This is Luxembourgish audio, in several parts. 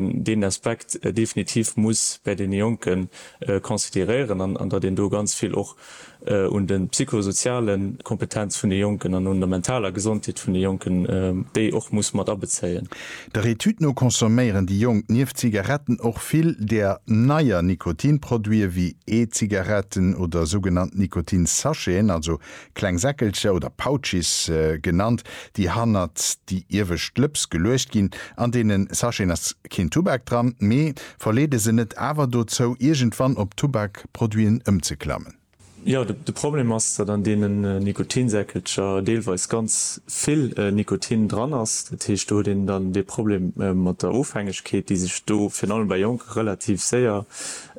deen Aspekt definitiv muss bäi deene Jonke consideréieren an datt een do ganz vill och un de psychosoziale Kompetenz vun de Jonken an un der mentaler Gesondheet vun de Jonken, déi och muss mat abezéien. Der Etüd no consomméieren déi Jonk nieft Zigaretten och vill där neier Nikotinproduite wéi E-Zigaretten oder sougenannt Nikotinsacheten, also Kleng Säckelcher oder Pouches genannt, déi hannert déi iewescht Lëps geluecht ginn. An deene Sacheten ass keen Tubak dran, mee verleede se net awer dozou, iergendwann op Tubakproduiten ëmzeklammen? Jo, de Problem ass, datt an deene Nikotinsäckelcher deelweis ganz vill Nikotin dran ass. Dat heescht, do huet een dann dee Problem mat der Ofhängegkeet, déi sech do virun allem bei Jonke relativ séier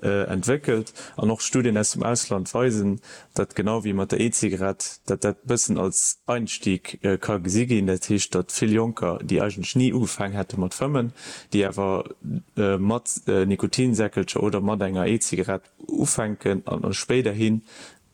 entwéckelt. An och Studien aus dem Ausland weisen, datt genau wéi mat der E-Zigarett, datt dat e bëssen als Einstieg ka gesi ginn, dat heescht, datt vill Jonker, déi eigentlech ni ugefaang hätte mat fëmmen, déi awer mat Nikotinsäckelcher oder mat enger E-Zigarett ufänken an spéiderhin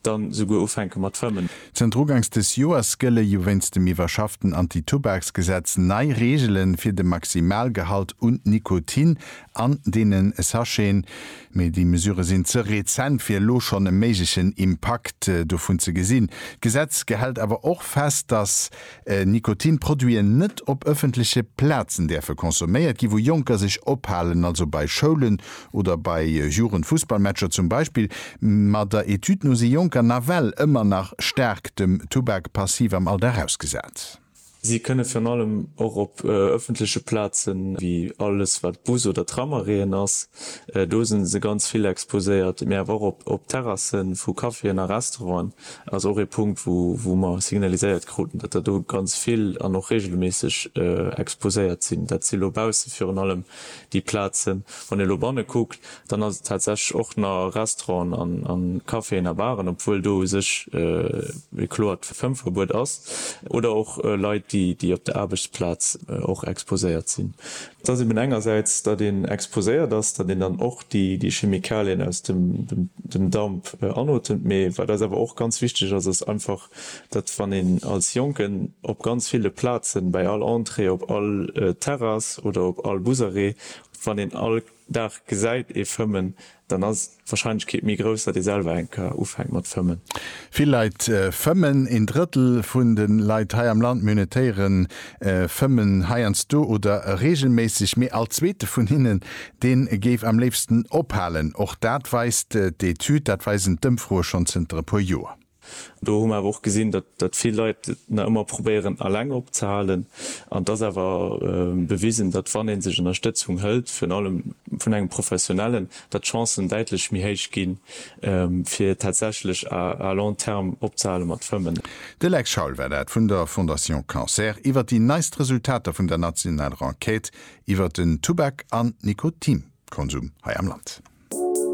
dann esouguer ufänke mat fëmmen. Zënter ugangs des Joers gëlle jo wéinst dem iwwerschafften Anti-Tubaks-Gesetz nei Reegele fir de Maximalgehalt un Nikotin an deene Sacheten, Mee déi Mesure sinn ze rezent, fir elo schonn e méiglechen Impakt dovun ze gesinn. D'Gesetz gehält awer och fest, datt Nikotinproduiten net op ëffentleche Plazen däerfe consomméiert ginn, wou Jonker sech ophalen, also bei Schoulen oder bei Jugendfussballmatcher zum Beispill. Ma der Etüd no si Jonker nawell ëmmer nach staark dem Tubak passiv am Alldag ausgesat. Si kënne virun allem och op ëffentleche Plazen, wéi alles wat Bus oder Tramarrêten ass, do si se ganz vill exposéiert, mee awer och op Terrasse vu Caféen a Restauranten, ass och ee Punkt wou mer signaliséiert kruten, datt der do ganz vill an och reegelméisseg exposéiert sinn. Dat si lo bausse virun allem déi Plazen. Wann ee lo banne kuckt, Dann ass et tatsächlech och na Restauranten a Caféen a Baren, obwuel do u sech e kloert Fëmmverbuet ass, oder och Leit, déi op der Aarbechtsplaz och exposéiert sinn. Et ass eben engersäits, datt een exposéiert ass, datt een dann och déi Chemikalien aus dem Damp anotemt, mee wat eis awer och ganz wichteg ass, ass einfach, datt wann een als Jonken op ganz ville Plazen, bäi all Entrée, op all Terrass oder op all Busarrêt, wann een all. Dag gesäit ee fëmmen, dann ass d'Warscheinlechkeet méi grouss, datt ee selwer eng Kar ufänkt mat fëmmen. Vill Leit fëmmen. Een Drëttel vun de Leit hei am Land minutéiere fëmmen heiansdo oder reegelméisseg, mee all Zweete vun hinnen, dee géif am léifsten ophalen. Och dat weist d'Etüd, dat weisen d'Ëmfroe schonn zënter e puer Joer. Do hu mer awer och gesinn, datt vill Leit et nach ëmmer probéieren eleng opzehalen. An et ass awer bewisen, datt wann ee sech Ënnerstëtzung hëlt, virun allem vun engem Professionellen, datt d'Chancen däitlech méi héich ginn, fir tatsächlech à long terme opzehale mat fëmmen. De Lex Schaul war dat vun der Fondation Cancer iwwer déi neist Resultater vun der nationaler Enquête iwwer den Tubak an Nikotinkonsum hei am Land.